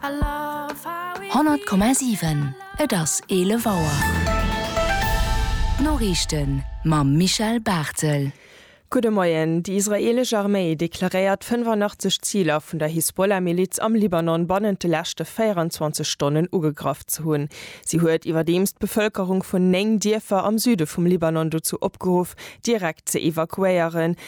100,7 Et ass 11 Auer. D'Noriichten mam Michel Barthel. Gudde Moien. Déi israeelesch Arméi deklaréiert 85 Ziler vun der Hisbollah-Miliz am Libanon bannent de leschte 24 Stonnen ugegraff ze hunn. Si huet iwwerdeems d'Bevëlkerung vun 9 Dierfer am Süde vum Libanon dozou opgeruff, direkt ze evakuéieren,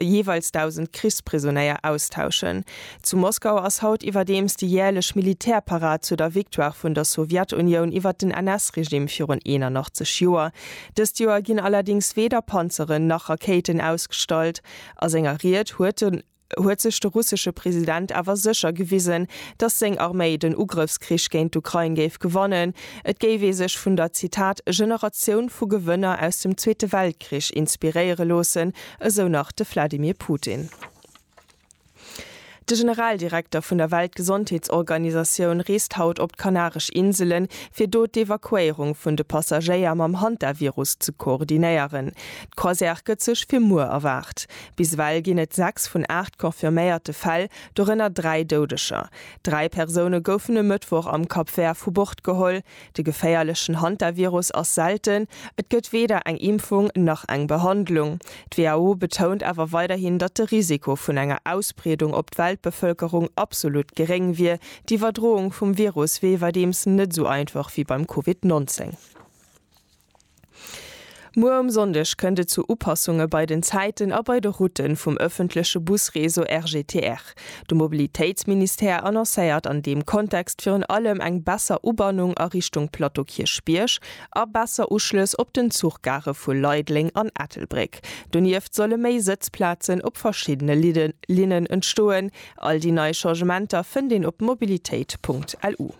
jeeweils 1.000 Krichsprisonéier austauschen. Zu Moskau ass haut iwwerdeems déi jäerlech Militärparad zu der Victoire vun der Sowjetunioun iwwer den NS-Regime virun 81 Joer. Dëst Joer ginn allerdéngs weder Panzeren nach Rakéiten ausgestallt. A senger Ried huet de huet sech de russesche President awer sécher gewisen, datt seng Arméi den Ugrëffskrich géint d'Ukrain géif gewannen. Et géif ee sech vun der, Zitat, Generatioun vu Gewënner aus dem Zweete Weltkrich inspiréiere loossen, Esou nach de Vladimir Putin. De Generaldirekter vun der Weltgesondheetsorganisatioun reest haut op d'Kanaresch Inselen, fir do d'Evakuéierung vun de Passagéier mam Hantavirus ze koordinéieren. D'Croisière gëtt sech fir muer erwaart. Bis ewell ginn et 6 vun 8 confirméierte Fäll, dorënner 3 Doudeger. Dräi Persoune goufen e Mëttwoch am Cap Vert vu Bord geholl. De geféierlechen Hantavirus ass selten, et gëtt weder eng Impfung nach eng Behandlung. D'WHO betount awer weiderhin, datt de Risiko vun enger Ausbreedung op d'Weltbevëlkerung absolut geréng wier. D'Iwwerdroung vum Virus wier iwwerdeems net esou einfach wéi beim Covid 19. Muer um Sonndeg kënnt et zu Upassunge bei den Zäiten a bei de Route vum ëffentleche Busreseau RGTR. De Mobilitéitsministère annoncéiert an deem Kontext virun allem eng besser Ubannung a Richtung Plateau Kierchbierg a besser Uschlëss op den Zuchgare vu Leideleng an Ettelbréck. Donieft solle méi Sëtzplazen op verschiddene Linnen entstoen. All déi nei Changementer fënnt een op mobilitéit.lu.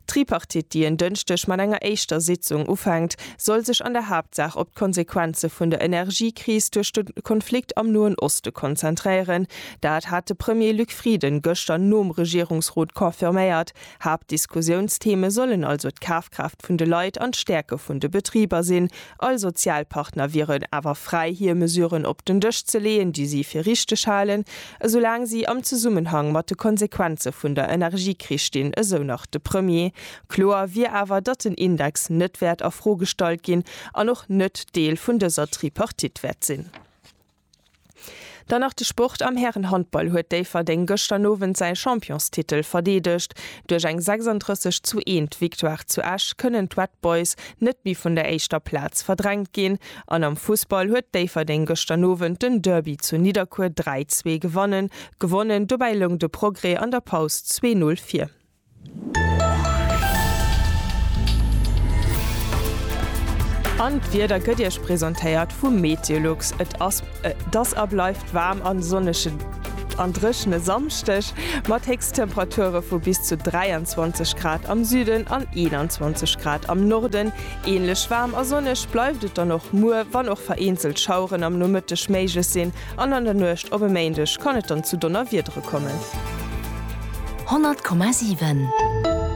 D'Tripartite, déi en Dënschdeg mat enger éischter Sitzung ufänkt, soll sech an der Haaptsaach op d'Konsequenze vun der Energiekris duerch de Konflikt am Noen Oste konzentréieren. Dat hat de Premier Luc Frieden gëschter nom Regierungsrot confirméiert. Haaptdiskussiounstheme sollen also d'Kafkraaft vun de Leit an d'Stäerke vun de Betriber sinn, All Sozialpartner wieren awer fräi hir Mesuren op den Dësch ze leeën, déi si fir richteg halen, esoulaang si am Zesummenhang mat de Konsequenze vun der Energiekris stinn, esou nach de Premier. Kloer wier awer, datt den Index net wäert a Fro gestallt ginn an och net Deel vun dëser Tripartite wäert sinn. Dann nach de Sport, Am Härenhandball huet Déifferdeng gëschter Owend säi Championstitel verdeedegt. Duerch eng 36 zu 1 Victoire zu Esch kënnen d'Red Boys net méi vun der éischter Plaz verdrängt ginn. An am Fussball huet Déifferdeng gëschter Nowend den Derby zu Nidderkuer 3, 2 gewannen gewonnen. Dobäi loung de Progrès an der Paus zwee Null vir. An d'Wieder gëtt Iech presentéiert vum Meteolux. Et ass et ass a bleift waarm a sonneschen an dréchene Samschdeg mat Héchsttemperature vu bis zu 23 Grad am Süden an 21 Grad am Norden. Änlech waarm a sonneg bleift et dann och muer, wann och vereenzelt Schaueren am Nomëtteg méiglech sinn. An an der Nuecht op e Méindeg kann et dann zu Donnerwiedere kommen. 100,7.